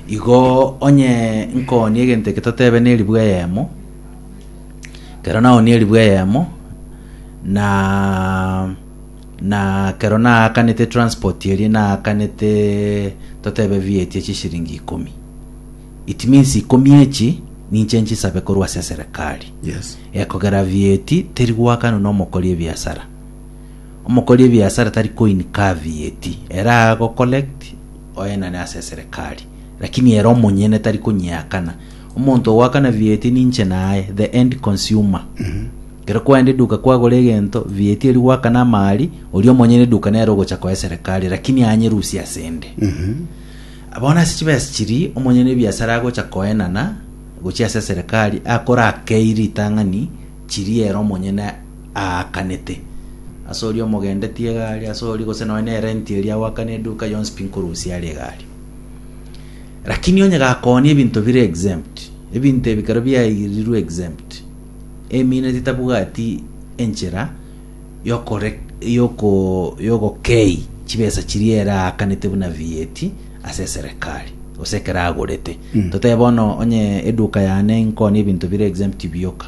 Igo onye nkoonia egento eke totebe neribu eyemo, kero naoonia eribu eyemo, na na kero naakanete transport eria naakanete totebe VAT ya chishiringi ikomi. It means ikomi echi ninche nchisabe korwa ase eserekari. Yes. Ekogera VAT teri goakanwa na omokori ebiasara. Omokori ebiasara tari koinkaa VAT. Ere agocollect oenane ase eserekari, lakini ere omonyene tari konyeakana. Omonto ogoakana VAT ninche naye, the end consumer. Ekero kwaenda eduka kwagora egento, VAT eri goakana amari, oria omonyene eduka nere ogocha koa eserekari, lakini anyerusie ase ende. Bono ase chibesa chiri omonyene ebiasara agocha koenana gochia ase eserekari akore akei ritang'ani chiri ere omonyene aakanete, ase oria omogendetie egari, ase oria gose nonya ne renti eria agoakane eduka yonsi pi nkorusia are egari. Lakini onye gakoonia ebinto bire exempt, ebinto ebi kero biairirwe exempt, emino titabwati enchera yokore yoko yogokei chibesa chiria ere aakanete buna VAT ase eserekari gose ekero agorete. Totebe bono onye eduka yane nkoonia ebinto bire exempt bioka.